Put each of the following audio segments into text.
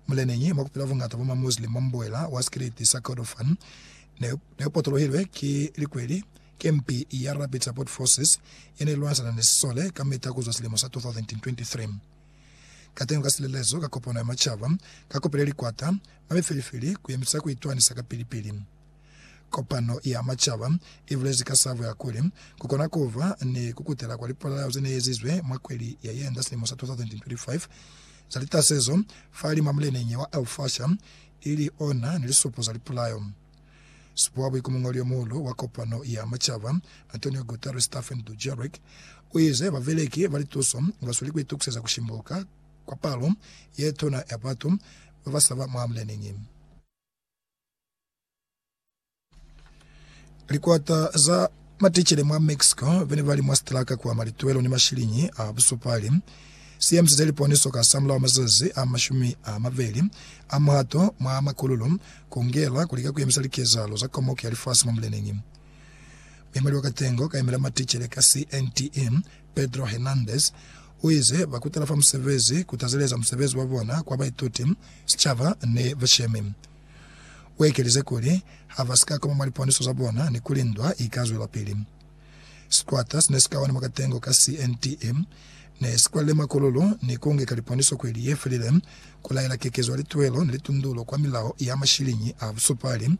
Muleneñi, mwa kupila buñata bwa ma Muslim mwa mubuela wa sikiliti sa Kordofan, ne, ne potolohilwe ki likweli, kempi ya Rapid Support Forces ye ne lwanisana ni sisole kamita kuzwa silimo sa 2023. Kateñi ka silelezo ka kopano ya macaba, ka kopile likwata, mwa mifeli-feli, ku yemisa ku itwanisa ka pili-pili. Kopano ya macaba i bulezi ka sabo ya kuli, ku kona ku ba ni ku kutela kwa lipolao ze ne ezizwe mwa kweli ya yenda silimo sa 2025, za litasezo fa lima muleneñi wa Elfasha, ili ona ni lisupo za lipulayo. Supo wa buikumungoli yo muhulu wa Kopano ya Macaba, Antonio Guterres Staffan Dujarric, u ize babeleki ba lituso ba sweli ku itukuseza ku shimbuka kwa palo ye tuna ya batu ba ba saba mwa muleneñi. Likwata za maticele mwa Mexico bene bali mwa sitalaka kwa malituelo ni mashiliñi a busupali si emiseze liponiso ka samulaho mazazi a mashumi a mabeli a muhato mwa makululu ku ngela ku lika ku emisa likezahalo za Komoko ya Lifasi mwa muleneñi. Muemeli wa katengo ka emela maticele ka CNTE, Pedro Hernandez, o ize ba kutala fa musebezi ku tazeleza musebezi wa bona kwa baituti, sichaba ni bashemi. U ekelize kuli, Ha ba si ka koma mwa liponiso za bona ni kuli ndwa i ka zwelapili. Sikwata si ne si ka ona mukatengo ka CNTE ne si kwalile makololo ni ku ngeka liponiso kweli ye felile ku laela kekezo ya lituelo ni litundulo kwa milao ya mashiliñi a busupali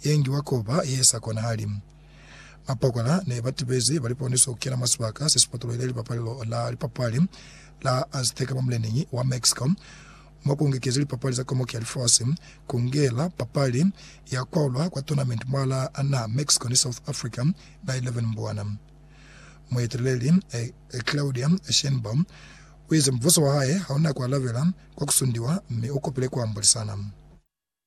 ye ngiwa ko ba ye sa konahali. Mapokola ne ba tibezi ba liponiso ku kena mwa sibaka se si potolohile lipapalelo la lipapali la Azteca mwa muleneñi wa Mexico. Mwa ku ngekezi lipapali za Komoki ya Lifasi, ku ngela papali ya kwaulwa kwa tournament mwa la na Mexico ni South Africa na 11 Mbwana, mueteleli Claudia Sheinbaum uize mubuso wa hae hauna ku alabela kwa ku sundiwa mi ukopile ku ambolisana.